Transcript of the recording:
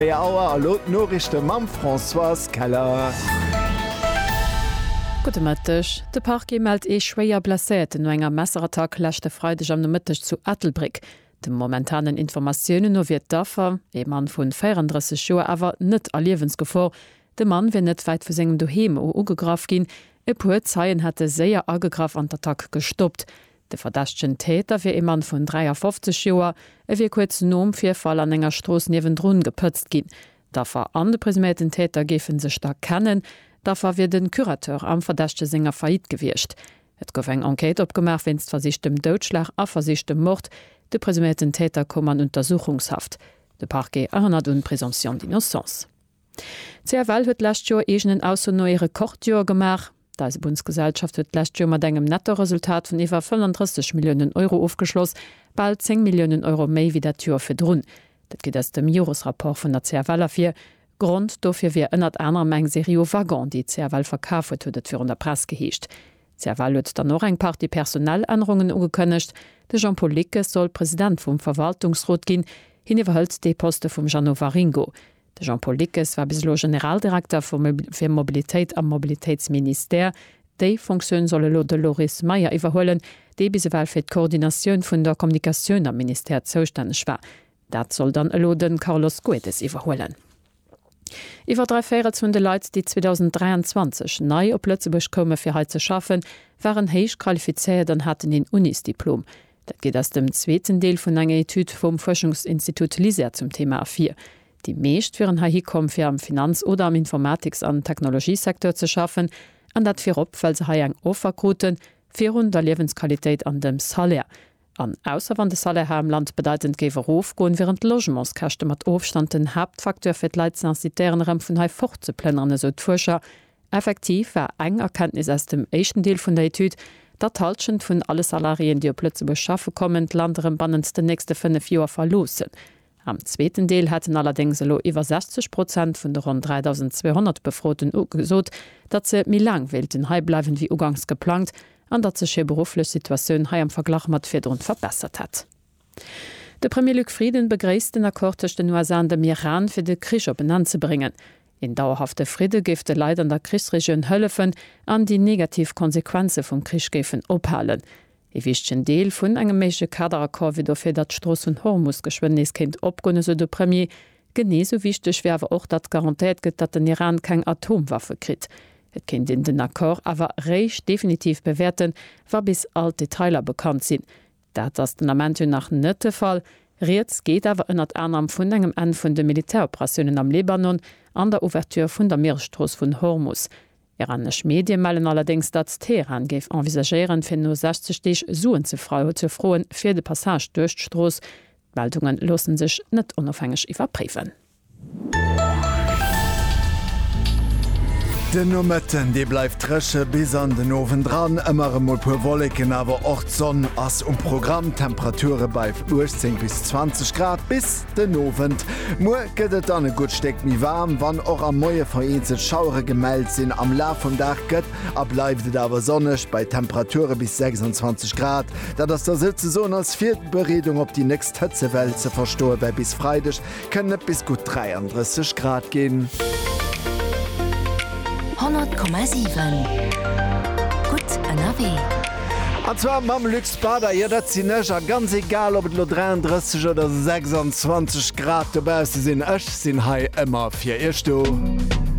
4 Auer a lo d'Noriichte mam Françoise Keller. Gudde Mëtteg. De Parquet mellt ee schwéier Blesséierten no enger Messerattack leschte Freideg am Nomëtteg zu Ettelbréck. De momentanen Informatiounen no wier d'Affer, ee Mann vu 34 Joer, awer net a Liewensgefor. De Mann wier net wäit vu sengem Doheem u ugegraff ginn. E puer Zeien hätte séier agegraff an d'Attack gestoppt. De verdächtegen Täter wier ee Mann vun 53 Joer. E wier kuerz nom Virfall an enger Strooss niewendrun gepëtzt ginn. D'Affer an de presuméierten Täter géife sech da kennen. D'Affer wier de Curateur am Verdächtege senger Faillite gewiescht. Et gouf eng Enquête opgemaach wéinst versichtem Doutschlag a versichtem Mord. De presuméierten Täter koum an Untersuchungshaft. De Parquet erënnert un d'Présomption d'innocence. CFL huet d'lescht Joer eegenen Ausso no ee Rekordjoer gemaach. D'Eisebunnsgesellschaft huet d'lescht Joer mat engem Nettoresultat vun iwwer 35 Milliounen Euro ofgeschloss, bal 10 Milliounen Euro méi wéi dat Joer virdrun. Dat geet aus dem Joresrapport vun der CFL ervir. Grond dofir wier ënnert anerem eng Serie u Waggonen, déi d'CFL verkaf huet, huet et virun der Press geheescht. D'CFL huet dann och eng Partie Personalännerungen ugekënnegt. De Jean-Paul Lickes soll President vum Verwaltungsrot ginn. Hien iwwerhëlt dee Poste vum Jeannot Waringo. De Jean-Paul Dickes war bis elo Generaldirekter fir Mobilitéit am Mobilitéitsministère. Déi Fonctioun soll elo de Loris Meyer iwwerhuelen, dee bis ewell fir d'Koordinatioun vun der Kommunikatioun am Ministère zoustänneg war. Dat soll dann elo de Carlos Goedes iwwerhuelen. Iwwer dräi Véirels vun de Leit, déi 2023 nei op Lëtzebuerg koume fir hei ze schaffen, waren héich qualifizéiert an haten een Unisdiplom. Dat geet aus dem zweeten Deel vun enger Etüd vum Fuerschungsinstitut LISER zum Thema ervir. Déi meescht wieren heihi komm, fir am Finanz oder am Informatiks an Technologiesecteur ze schaffen, an dat virop, well se hei eng Offer kruten, virun der Liewensqualitéit an dem Salaire. An ausser wann de Salaire hei am Land bedeitend géif erofgoen, wieren d'Logementskäschte mat Ofstand den Haaptfacteur, fir d'Leit ze incitéieren, erëm vun hei fortzeplënneren, esou d'Fuerscher Effektiv war eng Erkenntnis aus dem éischten Deel vun der Etüd, datt d'Hallschent vun alle Salariéen, déi op Lëtzebuerg schaffe kommen, d'Land erëm bannent den nächste fënnef Joer verloossen. Am zweeten Deel hätten allerdéngs elo iwwer 60 Prozent vun de ronn 3.200 Befroten ugesot, datt se méi laang wéilten hei bleiwen, wéi uganks geplangt, an datt sech hir berufflech Situatioun hei am Verglach mat virdrun verbessert hätt. De Premier Luc Frieden begréisst den Accord tëscht den USA an dem Iran, fir de Krich op en Enn ze bréngen. Een dauerhafte Fridde géif de Leit an der Krichsregioun hëllefen an déi negativ Konsequenze vum Krich géifen ophalen. Ee wichtegen Deel vun engem méigleche Kaderaccord wier dofir, datt d'Strooss vun Hormus geschwënn nees kéint opgoen, esou de Premier. Genee esou wichteg wier awer och, datt garantéiert gëtt, datt den Iran keng Atomwaffe kritt. Et kéint een den Accord awer réischt definitiv bewäerten, wa bis all d'Detailer bekannt sinn. Dat ass den Ament jo nach net de Fall. Rieds geet awer ënnert anerem vun engem Enn vun de Militäroperatiounen am Libanon an der Ouverture vun der Mieresstrooss vun Hormus. Iranesch Medie mellen allerdéngs, datt Teheran géif envisagéieren, fir no 60 Deeg Suen ze froen fir de Passage duerch d'Strooss. D'Meldunge loosse sech net onofhängeg iwwerpréiwen. Den Nomëtten, dee bleift dréche bis an den Owend dran. Ëmmer emol puer Wolleken, awer och d'Sonn ass um Programm. D'Temperature bei 18 bis 20 Grad bis den Owend. Muer gëtt et dann e gutt Stéck méi waarm, wann och am Moie vereenzelt Schauere gemellt sinn. Am Laf vum Dag gëtt a bleift et awer sonneg bei Temperature bis 26 Grad. Dat ass da souzesoen als Virbereedung op déi nächst Hëtzewell ze verstoe, well bis Freideg Kënnen et bis gutt 33 Grad ginn. 100,7 gutt ënnerwee. An zwar mam Luxpader, jo dat sinn ech. A ganz egal ob et elo 33 oder 26 Grad dobausse sinn, ech sinn hei ëmmer fir iech do.